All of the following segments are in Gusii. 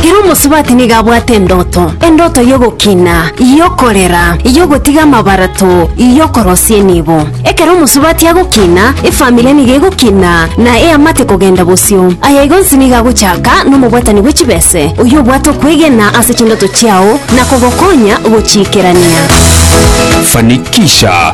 Kera omosubati nigo abwate endoto, endoto y'ogokina, y'okorera, y'ogotiga amabarato, y'okorosia enibo. Ekero omosubati agokina, efamiri nigo egokina na eamate kogenda bosio. Aya igo onsi nigo agochaka nomobwatani bwe chibese, oyio obwate okwegena ase chindoto chiao na kogokonya gochiikerania. Fanikisha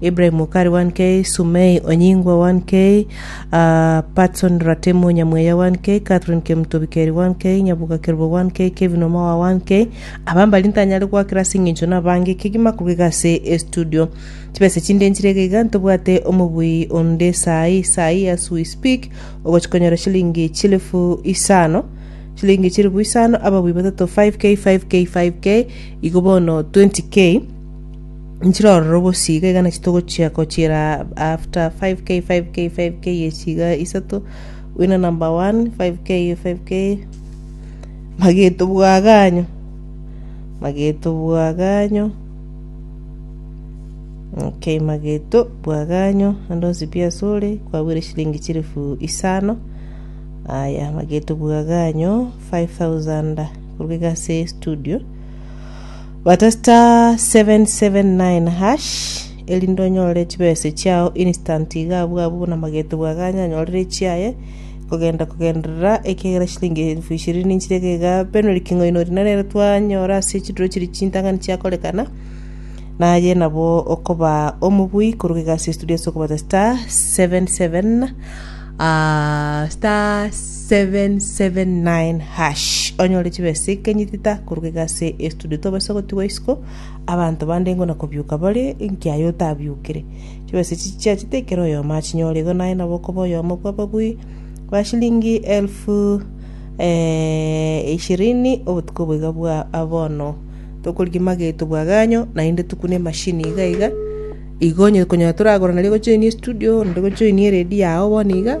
Ibrahim mokari wa Nkei, Sumei onyingwa wa Nkei, Patson Ratemo nyamweya wa Nkei, Catherine Kemutobikeri wa Nkei, Nyaboka Kerubo wa Nkei, Kevin Omawa wa Nkei. Aba mbari ntanyare goakera ase eng'encho nabange ekegima korwa iga ase estudio. Chibesa chinde nchire iga iga ntobwate omobui onde saai saai as we speak ogochi konyora chilingi chilifu isano chilingi chilifu isano ababui batato 5k 5k 5k igo bono 20k Nchire ororo bosio iga iga nachio togochia gochiera after 5k 5k 5k echio iga isato winner number one 5k 5k mageto bwaganyo mageto bwaganyo ok mageto bwaganyo ande onsi pi ase ore kwabwere chilimingi chilifu isano aya mageto bwaganyo 5000 korwa iga ase estudio. Bata star 779 hash erinde onyore chibese chiao instant iga abwo abwo buna magete bwa ganya anyorere echiaye kogenda kogenderera ekiagera chilingi elfu ishirini nchire iga iga Penuel King'oino rina nere twanyora ase chituro chiri chintang'ani chiakorekana naye nabo okoba omobui koruga iga ase studio ase okobata star 77 ah, star 779# onyore chibesa ekenyi tita korwa egase estudio tobase gotigwa isiko abanto bande ngona kobiuka bare nkiaye otabiukire chibesa echi chiachete ekero oyomo achinyore igo naye nabo okoba oyomo bw'ababui ba shilingi elfu eh, ishirini obotuko boiga bwa abono tokorigia mageto bwaganyo naende tukune emashini iga iga igo onye konyora toragora nario gojoinia estudio onde gojoinia eredio yao bono iga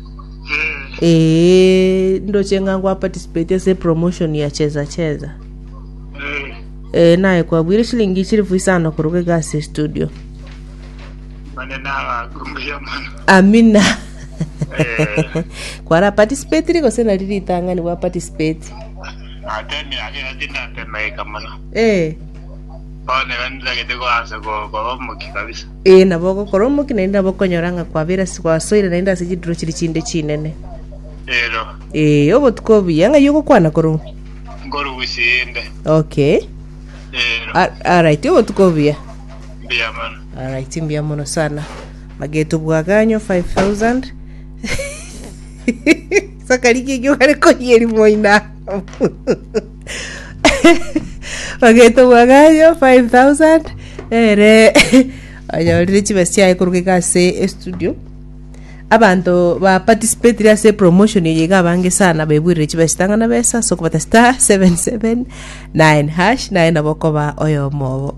Ee, ndoche ng'a ngwa participate ase promotion ya cheza cheza. Ee, naye kwabwire shilingi chilifu isano koruga iga ase studio. mane nabagumbuya mono Amina. Eh. Kwara participate gose nari ritang'ani gwa participate. ate emiaka iga tindatemeika mono Ee, bono iga nitagete koansa ko- koba omoki kabisa Ee, nabo ogokora omokia, naende nabo okonyora ng'a kwabeire ase gwasoire, naende ase chidiro chiria chinde chinene. Ero, Ee, obotuko obuya, ng'ai ogokwana korwa? nkorwa Busiinde. Okay. Ero, Al- Alright, obotuko obuya. mbuya mono. Alright, mbuya mono sana. Mageto bwaganyo 5000. Sakari kiki ogare koyeri moina. bagetogwa Gayo 5000 ere onyorire chibesa chiaye koruga iga ase estudio abanto ba participated ase promotion eye iga abange sana bebuire chibesa chitang'ana besa ase okobata star 779 hash naye nabo okoba oyomo obo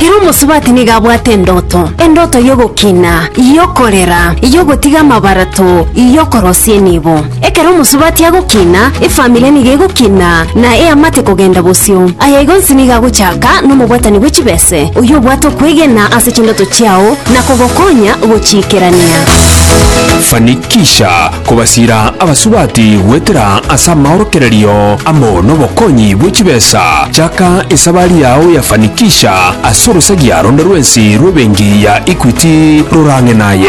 Ere omosubati nigo abwate endoto, endoto y'ogokina, y'okorera, y'ogotiga amabarato, y'okorosia enibo. Ekero omosubati agokina, efamiri nigo egokina, na eamate kogenda bosio. Aya igonsi nigo agochaka nomobwatani bwe chibese, oyio obwate okwegena ase chindoto chiao na kogokonya gochiikerania. Fanikisha kobasiira abasubati goetera ase amaorokererio amo nobokonyi bwe chibesa, chaka esabari yao ya fanikisha ase orosagia ronde rwensi rw'ebenki ya Equity rorang'e naye.